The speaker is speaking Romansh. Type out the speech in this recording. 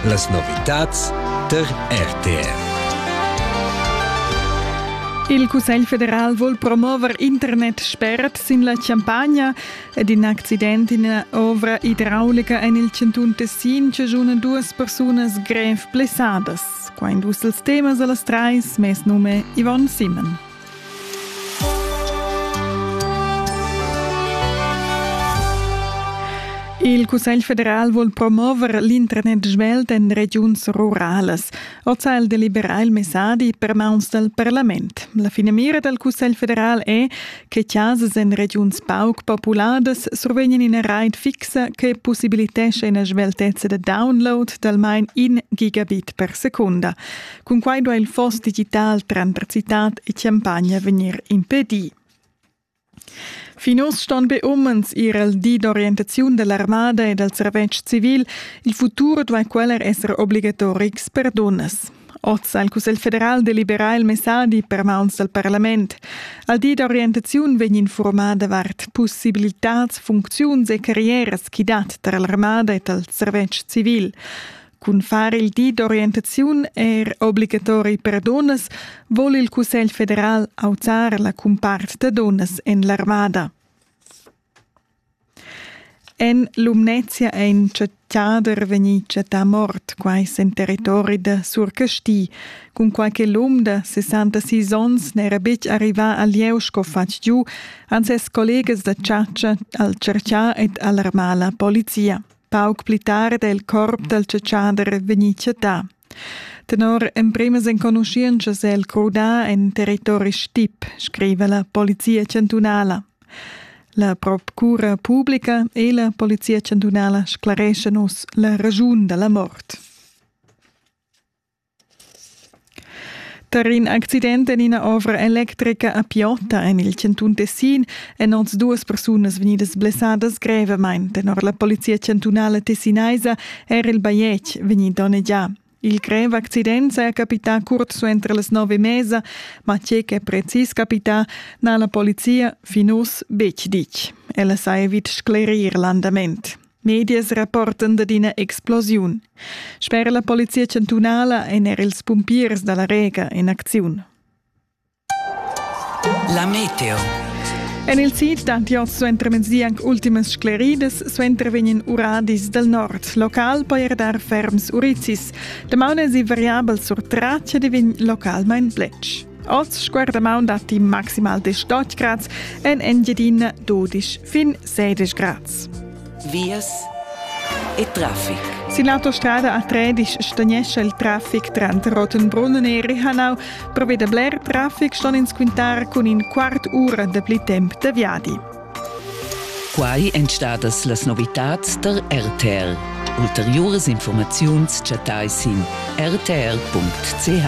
Las novitads tar RTR. Il Cussegl federal vuol promover internet spert sin la Champagna ed in accident in ovra idraulica en il chantun Tessin chaschuna duas persunas grev blessadas. Qua in dus els temas a las trais, mes num è Yvonne Simon. Il Cussegl federal vul promover l'internet svelt en regiuns ruralas. Oz ha el deliberà il messadi per mauns dal parlament. La finamira dal Cussegl federal è che chasas en regiuns pauc populadas survegnan ina rait fixa che possibilitescha ina sveltezza da download d'almain in gigabit per secunda. Cunquai duai il foss digital tranter citad e champagna vegnir impedì. Fin uss ston be umens ir al di d'orientaziun da l'armada e dal servetsch civil. Il futur duai quella esser obligatorics per dunnas. Oz ha il Cussegl federal deliberà il messadi per mauns dal parlament. Al di d'orientaziun vegn informada davart possibilitads, funcziuns e carrieras ch'i dat tar l'armada e dal servetsch civil. Cun far il di d'orientaziun er obligatori per dunnas vogl il Cussegl federal auzar la cumpart da dunnas en l'armada. En Lumnezia è in chattader vegnì chattà mort, quai en territori da Surcasti. Cun qualche lum da 66 onns n'era betg arrivà al lieu sco fatg giu, han ses collegas da chatscha al cerchà ed alarmà la polizia. Pauc pli tard è il corp dal tschetschader vegnì chattà. Tenor emprimas enconuschientschas è el crudà en territori stip, scriva la polizia chantunala. La procura publica e la polizia chantunala sclareschan uss la raschun da la mort. Tar in accident en ina ovra electrica a Piotta en il chantun Tessin èn oz duas persunas vegnidas blessadas grevamain. Tenor la polizia chantunala tessinaisa era il bajetg vegnì donnegià. Il grev accident saja capità curt suenter las nove e mesa, ma tge ch'è precis capità n'ha la polizia fin uss betg ditg. Ella saja vid sclerir l'andament. Medias rapportan dad ina explosiun. Sper la polizia chantunala èn er ils pumpiers da la Rega en acziun. La meteo. En il sid d'Antios suentermezdi anc ultimas scleridas, suenter vegnan uradis dal nord. Local poi er dar ferms urizis. Damaun èsi variabel sur Tracia e vegn localmain bletsch. Oz sguarda maun datti maximal de stotg grads en Engiadina 12 fin 16 grads. Vias e traffic. Sin l'autostrada a 13 stagnesce il traffic tranter Rottenbrunn e Rihanau. Provede bler traffic ston ins quintar cun in quart ura de pli temp de viadi. Quai èn stadas las novitads der RTL. Ulteriores Informaziuns chattai sin rtl.ch.